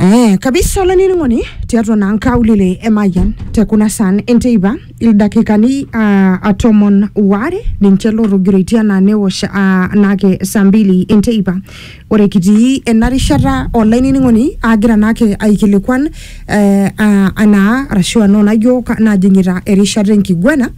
Eh, kabisa olainining'oni tiatua naa nkaulele emayian te kuna saan enteipa ildakikani ah, ah, tomon waare ninche lotogiroitie anaa newosh ah, naake saa mbili enteipa ore kitii ena rishata olainining'oni agira naake aikilikuan eh, ah, anaa arashu anaa naijo ka- najing'ita erishata enkiguana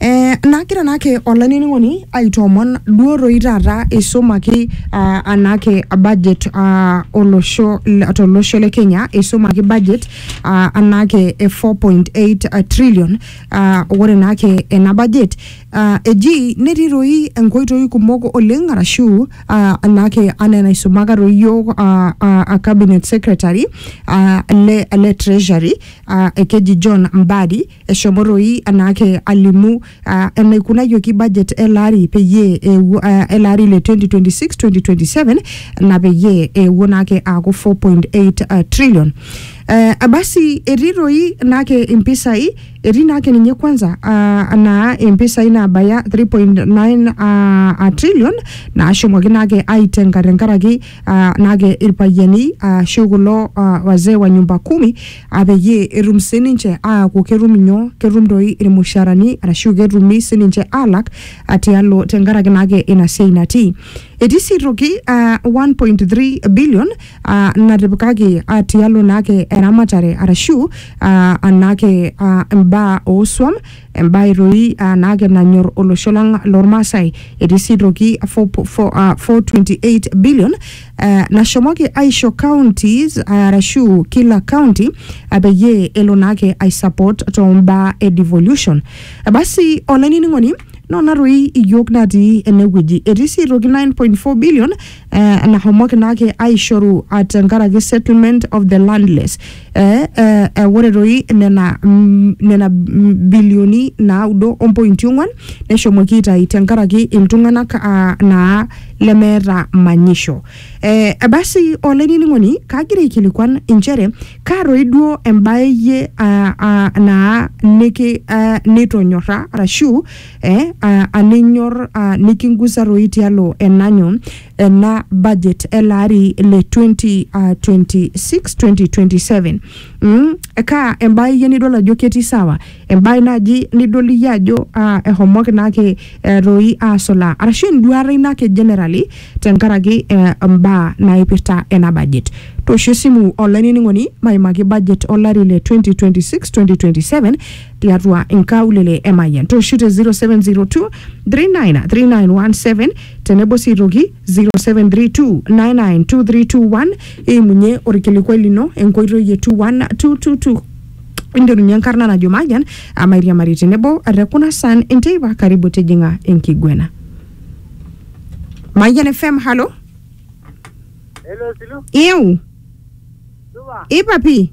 Eh, nagira naake olainining'oni aitoomon duo toi taata eisumaki ah, anaake budget ah, olosho le- tolosho le Kenya eisumaki budget ah, anaake e 4.8 trillion ah, ore naake ena budget ah, eji netii toi enkoitoi kumok oleng arashu ah, anaake anaa enaisumaka toi yiok ah, ah, ah, cabinet secretary ah, le, le treasury ah, ekeji John Mbadi Eshomo toi anaake alimu ah, enaikunayioki budget ele ari peyie eewuo ah, ele ari le 2026-2027 na peyie eewuo naake aaku 4.8 ah, trillion. Eh, abasi etii toi naake impisai etii naake ninye kwanza ah, naa impisai naabaya 3.9 ah, ah, trillion naashomoki naake aitenga tenkaraki uh, nake irpayiani ashu uh, kulo uh, wazee wa nyumba kumi uh, peyie etum sininche aaku ketum inyoo ketum doi irmusharani arashu ketumi sininche alak uh, tialo tenkaraki nake ina siai natii etii sii toki uh, 1.3 billion uh, natipikaki uh, tialo nake eramatare arashu uh, anake uh, imbaa ooswam Embae toi aa naake nanyor olosho lang lormaasai. Etii sii toki 4.28 billion eh, nashomoki aisho counties arashu kila county eh, peyie elo naake ai support too mbaa e devolution. Eh, Basi olainining'oni nona toi iyiook natii enewueji. Etii sii toki 9.4 billion eh, nahomoki naake aishoru ah, tenkaraki settlement of the landless eh, eh, eh, ore toi nena, mm, nena mm, bilioni naudo ompointi ong'wan neshomoki aitai tenkaraki iltung'anak ah, naa lemeeta manyisho eh, basi olainining'oni kagira aikilikuan inchere kaa toi duo embae iyie ah, ah, naa niki ah, nitonyorra arashu eh, a- alinyor a, nikingusa toi tialo enanyo ena budget ele ari le 2026-2027 mm, kaa embae iyie nidol ajo ketii sawa embae naaji nidol iyie ajo ah, ehomoki naake eh, toi asulaa arashu enduata ino ake generally tenkaraki eh, mbaa naipirta ena budget toosho esimu olainining'oni maimaki budget olari le 2026-2027 tiatua inkaulele e Mayian tooshu te 0702 393917 tenebo sii aitoki 0732992321 iimunye orkilikuai lino enkoitoi e 21222 inderunye enkarna najo Mayian amairiamari tenebo te kuna san enteipa karibu tijing'a enkiguena Mayian FM halo Hello, Silu. ieu Supa. ipapi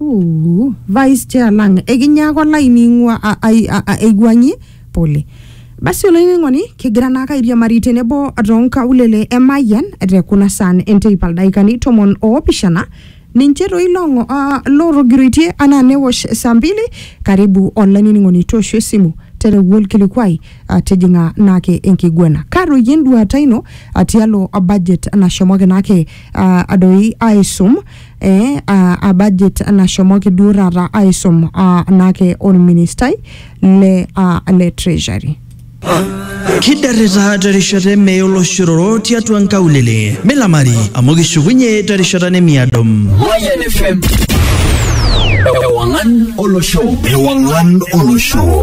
Ooh, vice chair lang ekinya ake olaining'ua a- ai- a- a- aiwuang'ie pole basi olainining'oni kigira naake airiamari tenebo toonkaulele e Mayian te kuna saan enteipa ildaikani tomon oopishana ninche toi loong'o uh, lootogiroitie anaa newosh saa mbili karibu olainining'oni tooshu esimu tereu olkilikuai uh, tijing'a naake enkiguana kaa doi enduata ino uh, tialo uh, budget nashomoki naake uh, doi aisum eh, a, a budget nashomoki duo taata aisum a, naake olministai le, a, le treasury kidarrita terishata emeye oloshororo tiatua nkaulele milamari amu kishukunye terishata nemiado Mayan FM. Ewangan Olosho. Ewangan Olosho.